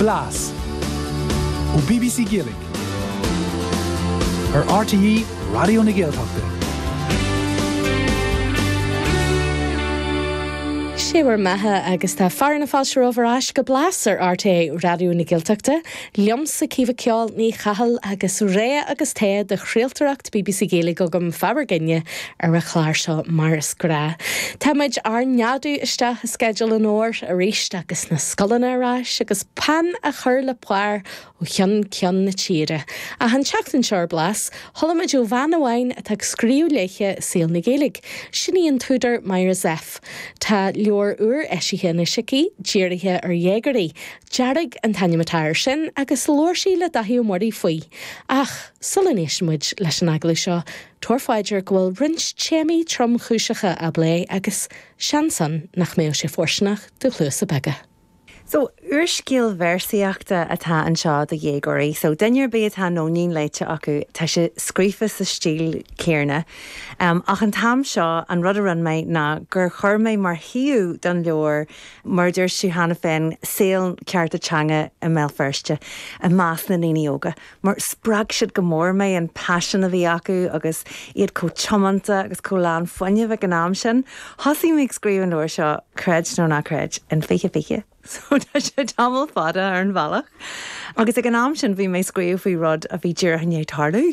Blas ó bbc Gaeilge ar RTÉ Raidió na Gaeltachta. Sé bhur mbeatha agus tá fear na fáilte romhaibh ar ais go Blas ar RTÉ Raidió na Gaeltachta. Liomsa Caoimhe 'Ceol' Ní Chathail agus rogha agus togha de chraoltóireacht bbc Gaeilge agam, faoi bhur gcoinne Ar a chlár seo mar is gnáth, tá muid ár neadú isteach i sceideal an fhómhair arís agus na scoileanna ar ais agus peann á chur le pár ó cheann ceann na tíre. Ach an tseachtain seo ar Blas, chuala muid ó bhean amháin atá ag scríobh léithe i saol na Gaeilge, sin í an t-údar Myra Zepf. Tá leabhar úr eisithe anois aici, dírithe ar dhéagóirí. Dearg an t-ainm atá air sin agus labhair sí le Dáithí Ó Muirí faoi. Ach sula n-éisteann muid leis an agallamh seo, Tabhair faoi deara go bhfuil roinnt téamaí tromchúiseacha á bplé agus seans ann nach mbeadh sé fóirsteanach do chluasa beaga. So, úrscéal véarsaíochta atá anseo do dhéagóirí. So, duine ar bith atá Nóinín léite acu, tá sé scríofa sa stíl chéarna. Ach an t-am seo, an rud a rinne mé ná gur chuir mé mar shuíomh don leabhar, mar a dúirt tú cheana féin, saol cearta teanga i mBéal Feirste i measc na ndaoine óga. mar spreag siad go mór mé, an paisean a bhí acu agus iad chomh tiomanta agus chomh lán fuinnimh ag an am sin. Thosaigh mé ag scríobh an leabhair seo, creid nó ná creid, in 2020, so tá sé tamall fada ar an bhealach, agus ag an am sin bhí mé ag scríobh faoi rud a bhí díreach i ndiaidh tarlú,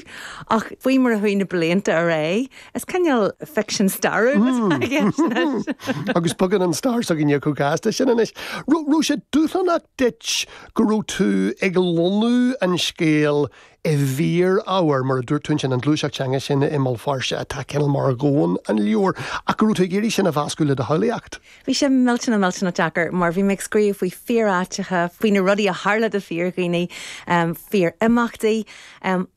ach faoi mar a chuaigh na blianta ar aghaidh, is cineál ficsean stairiúil atá i gceist anois. Agus bogann an stair s'againne chomh gasta sin anois. Raibh sé dúshlánach duit go raibh tú ag lonnú an scéil i bhfíor-ábhar, mar a dúirt tú ansin, an ghluaiseacht teanga sin i mBéal Feirste atá cineál mar dhomhan an leabhair, ach go raibh tú ag iarraidh sin a mheascadh le do shamhlaíocht. Bhí sé millteanach, millteanach deacair, mar bhí mé ag scríobh faoi fíor-áiteacha, faoi na rudaí a tharla do fíor-dhaoine, fíor-imeachtaí,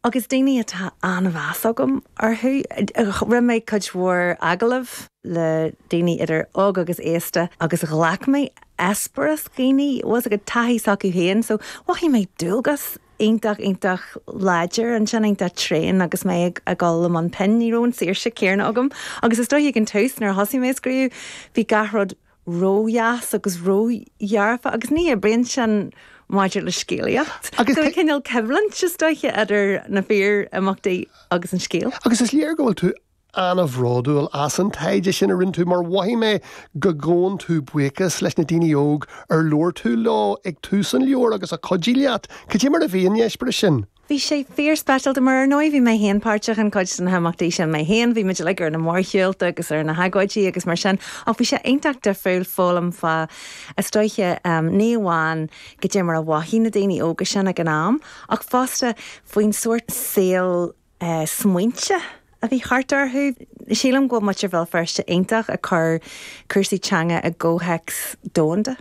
agus daoine atá an-mheas agam orthu. Rinne mé cuid mhór agallamh le daoine idir óg agus aosta, agus ghlac mé eispéireas daoine agus an taithí s'acu féin. So, mhothaigh mé dualgas iontach, iontach láidir ansin, iontach tréan agus mé ag dul i mbun pinn. Ní raibh an saoirse céarna agam agus is dóigh ag an tús nuair a thosaigh mé ag scríobh, bhí gach rud ródheas agus ródhearfa agus ní oibríonn sin maidir le scéalaíocht. Agus tá cineál coimhlint, is dóiche, idir na fíor-imeachtaí agus an scéal. Agus is léir go bhfuil tú an-bhródúil as an taighde sin a rinne tú mar mhothaigh mé go gabhann tú buíochas leis na daoine óg ar labhair tú leo ag tús an leabhair agus a chuidigh leat. Cad é mar a bhí an eispéireas sin? Bhí sé fíorspeisialta mar, ar ndóigh, bhí mé féin páirteach in cuid de na himeachtaí sin mé féin, bhí muid uilig ar na mórshiúlta agus ar na hagóidí agus mar sin ach bhí sé iontach difriúil foghlaim fá, is dóiche, ní amháin cad é mar a mhothaigh na daoine óga sin ag an am ach fosta faoin sórt saoil a smaointe a bhí thart orthu. Sílim go bhfuil muintir Bhéal Feirste iontach ag cur cúrsaí teanga i gcomhthéacs domhanda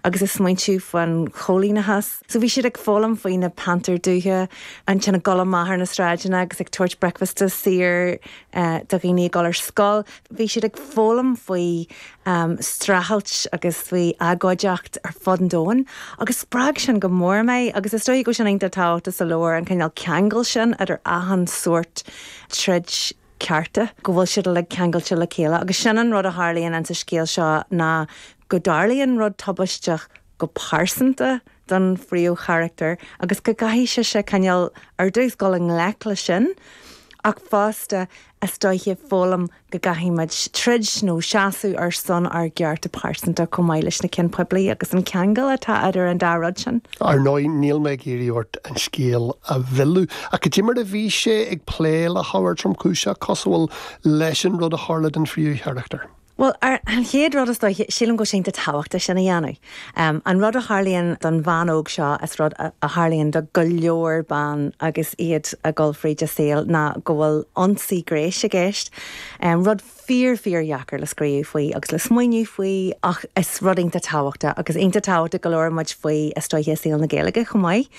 agus ag smaointiú faoin choilíneachas. So bhí siad ag foghlaim faoi na pantair dubha ansin ag dul amach ar na sráideanna agus ag tabhairt bricfeasta saor do dhaoine ag dul ar scoil. Bhí siad ag foghlaim faoi streachailt agus faoi agóideacht ar fud an domhain agus spreag sin go mór mé agus is dóiche go bhfuil sin iontach tábhachtach sa leabhar, an cineál ceangal sin idir achan sórt troid cearta, go bhfuil siad uilig ceangailte le chéile agus sin an rud a tharlaíonn insa scéal seo ná go dtarlaíonn rud tubaisteach go pearsanta, don phríomhcharachtar agus go gcaithfidh sise coinneáil ar dtús, dul i ngleic leis sin ach fosta is dóiche foghlaim go gcaithfidh muid troid nó seasamh ar son ár gcearta pearsanta chomh maith leis na cinn poiblí agus an ceangal atá idir an dá rud sin. Ar ndóigh, níl mé ag iarraidh ort an scéal a mhilleadh ach cad é mar a bhí sé ag plé le hábhar tromchúiseach cosúil leis an rud a tharla don phríomhcharachtar, Bhuel, ar an chéad rud, is dóiche, sílim go bhfuil sé iontach tábhachtach sin a dhéanamh. An rud a tharlaíonn don bhean óg seo is rud a tharlaíonn do go leor ban agus iad ag dul fríd a saol ná go bhfuil ionsaí gnéis i gceist, rud fíor fíordheacair le scríobh faoi agus le smaoineamh faoi ach is rud iontach tábhachtach agus iontach tábhachtach go labhrann muid faoi is dóiche i saol na Gaeilge chomh maith.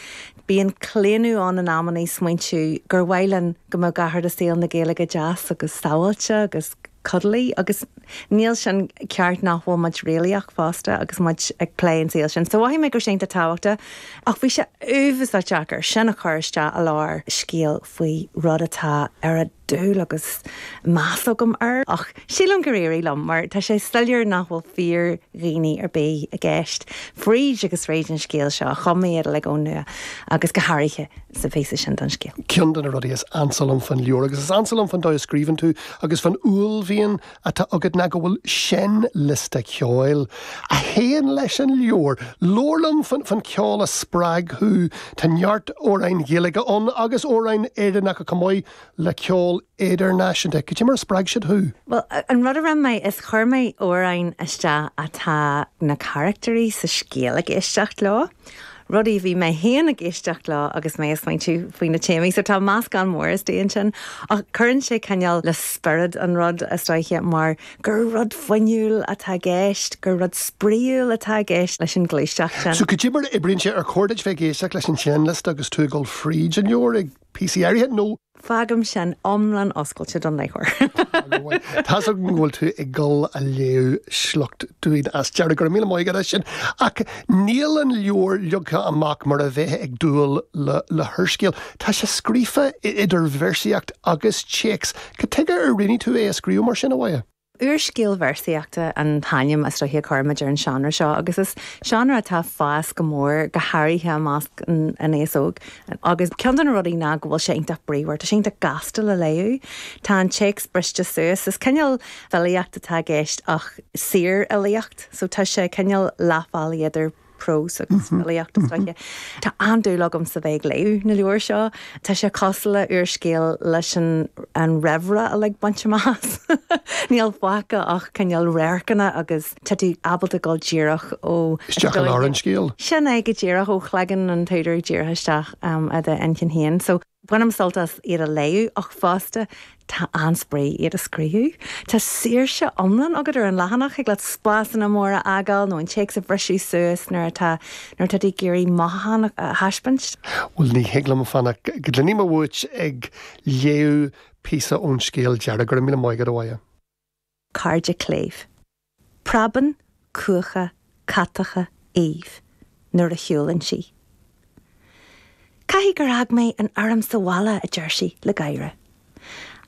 Bíonn claonadh ann in amannaí smaointiú gur mhaith linn go mbeadh gach rud i saol na Gaeilge deas agus sabháilte agus. cuddly agus níl sin ceart nach bhfuil muid réalaíoch fosta agus muid ag plé an saol sin so mhothaigh mé go raibh sin iontach tábhachtach ach bhí sé uafasá deacair sin a chur isteach i lár scéal faoi rud atá an oiread dúil agus meas agam air ach sílim gur éirigh liom mar tá sé soiléir nach bhfuil fíordhaoine ar bith i gceist fríd agus fríd an scéal seo, chum mé iad uilig ón nua agus go háirithe sa phíosa sin don scéal. Ceann de na rudaí is ansa liom faoin leabhar, agus is ansa liom faoin dóigh a scríobhann tú, Agus fán uaillmhian atá agat ná go bhfuil seinnliosta ceoil a théann leis an leabhar. Labhair liom fán cheol a spreag thú. Tá neart amhráin Ghaeilge ann agus amhráin Éireannacha chomh maith le ceol idirnáisiúnta. Cad é mar a spreag siad thú? Bhuel, an rud a rinne mé, is chuir mé amhráin isteach atá na carachtairí sa scéal ag éisteacht leo. rudaí a bhí mé féin ag éisteacht leo agus mé ag smaointiú faoi na téamaí. So tá meascán mór istigh ansin ach cuireann sé cineál le spiorad an rud, is dóiche, mar gur rud fuinniúil atá i gceist, gur rud spraíúil atá i gceist leis an ghluaiseacht sin. So cad é mar a oibríonn sé? Ar chóir duit bheith ag éisteacht leis an seinnliosta agus tú ag dul fríd an leabhar ag. Píosaí áirithe nó. Fágaim sin iomlán oscailte don léitheoir. Tá's agam go bhfuil tú ag dul a léamh sliocht dúinn as deireadh, go raibh míle maith agat as sin, ach níl an leabhar leagtha amach mar a bheith ag dúil le húrscéal. Tá sé scríofa idir véarsaíocht agus téacs. Cad tuige ar roghnaigh tú é a scríobh mar sin, a Mháire? Úrscéal véarsaíochta an t-ainm is dóiche a chuirimid ar an seánra seo agus is seánra atá ag fás go mór, go háirithe i measc an aos óg. Agus ceann de na rudaí ná go bhfuil sé iontach bríomhar, tá sé iontach gasta le léamh, tá an téacs briste suas, is cineál filíocht atá i gceist ach saorfhilíocht so tá sé cineál leath bealaigh idir prós agus filíocht, is dóiche. Tá an-dúil agamsa a bheith ag léamh na leabhair seo. Tá sé cosúil le úrscéal leis an raimhre uilig bainte amach as. Níl fágtha ach cineál radharcanna agus tá tú ábalta dul díreach ó, is dóiche. Isteach i lár an scéil. Sin é go díreach, ó chloigeann an t-údar díreach isteach i do inchinn féin. So. Bainim sult as iad a léamh ach fosta tá an-spraoi iad a scríobh. Tá saoirse iomlán agat ar an leathanach, thig leat spásanna móra a fhágáil nó an téacs a bhriseadh suas nuair atá nuair atá tú ag iarraidh mothúchán a thaispeáint. Bhuel, ní thig liom fanacht go gcluinfidh mé uait ag léamh píosa ón scéal deiridh, go raibh míle maith agat, a Mháire. cairde cléibh. Preabann cuacha catacha Aoibhe nuair a shiúlann sí. Caithfidh gur fhág mé an fhoirm sa bhaile, a deir sí le gáire.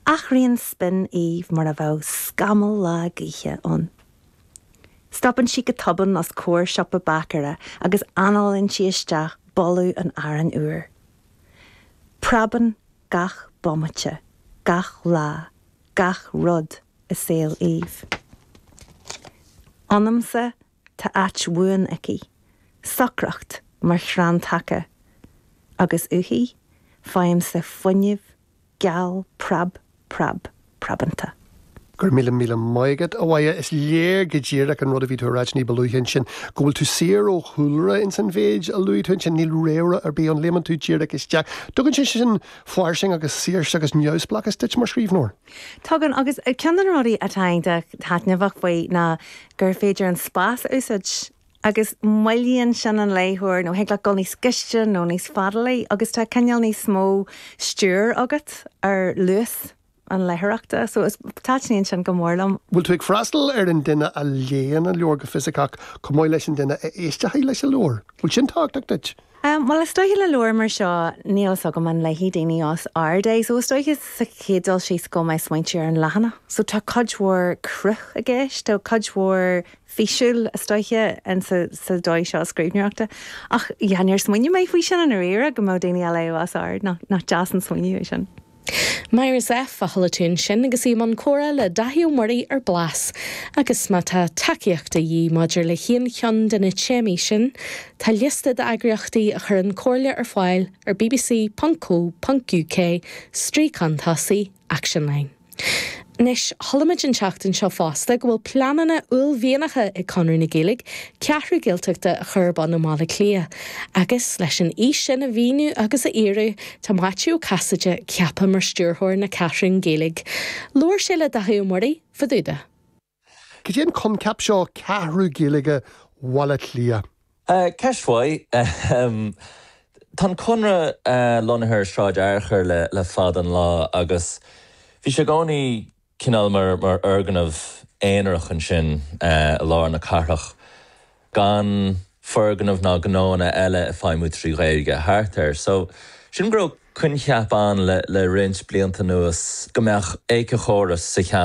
Athraíonn spion Aoibhe mar a bheadh scamall lá gaoithe ann. Stopann sí go tobann os comhair siopa báicéara agus análaíonn sí isteach boladh an aráin úir. Preabann gach bomaite, gach lá, gach rud i saol Aoibhe. Ionamsa tá áit bhuan aici, socracht mar chrann taca, agus uaithi faighimse fuinneamh geal preab preab preabanta. Go raibh míle míle maith agat, a Mháire. Is léir go díreach an rud a bhí tú a ráit ní ba luaithe ansin, go bhfuil tú saor ó chúlra ins an mhéid a luaigh tú ansin. Níl réamhrá ar bith ann, léimeann tú díreach isteach. Tugann sé sin. fairsing agus saoirse agus neamhspleáchas duit mar scríbhneoir. Tugann, agus ceann de na rudaí atá taitneamhach faoi ná gur féidir an spás a úsáid agus moillíonn sin an léitheoir nó thig leat dul níos gaiste nó níos fadalaí agus tá cineál níos mó stiúir agat ar luas. an léitheoireachta. So is, taitníonn sin go mór liom. Bhfuil tú ag freastal ar an duine a léann an leabhar go fisiceach chomh maith leis an duine a éisteochaidh leis an leabhar? Bhfuil sin tábhachtach duit? Bhuel, is dóiche, le leabhar mar seo, níl fhios agam an léifidh daoine os ard é, so is dóiche sa chéad dul síos go mbím ag smaoineamh ar an leathanach. So tá cuid mhór cruth i gceist, tá cuid mhór físiúil is dóiche in sa, sa dóigh seo scríbhneoireachta. Ach yeah, níor smaoinigh mé faoi sin i ndáiríre go mbeadh daoine á léamh os ard, nach, nach deas an smaoineamh é sin. Máire Zepf a chuala tú ansin agus í i mbun comhrá le Dáithí Ó Muirí ar Blas. Agus má tá tacaíocht de dhíth maidir le haon cheann de na téamaí sin, tá liosta d'eagraíochtaí a chuireann comhairle ar fáil ar bbc.co.uk, stríocán tosaigh, Action Line. Anois, chualaimid an tseachtain seo fosta go bhfuil pleananna uaillmhianacha ag Conradh na Gaeilge Ceathrú Gaeltachta a chur ar bun i mBaile Átha Cliath. Agus, leis an fhís sin a mhíniú agus a fhíorú, tá Maitiú Ó Casaide ceaptha mar stiúrthóir na Ceathrún Gaeilge. Labhair sé le Daithí Ó Muirí fá dtaobh de cad é an coincheap seo Ceathrú Gaeilge Bhaile Átha Cliath? Ceist mhaith, ahem. Tá an Conradh lonnaithe ar Shráid Fhearchair le fada an lá agus bhí sé i gcónaí cineál mar fhoirgneamh aonarach ansin i lár na cathrach, gan foirgnimh ná gnóanna eile ag feidhmiú trí Ghaeilge thart air. So, sílim go raibh coincheap ann le roinnt blianta anuas go mbeadh éiceachóras sa cheantar,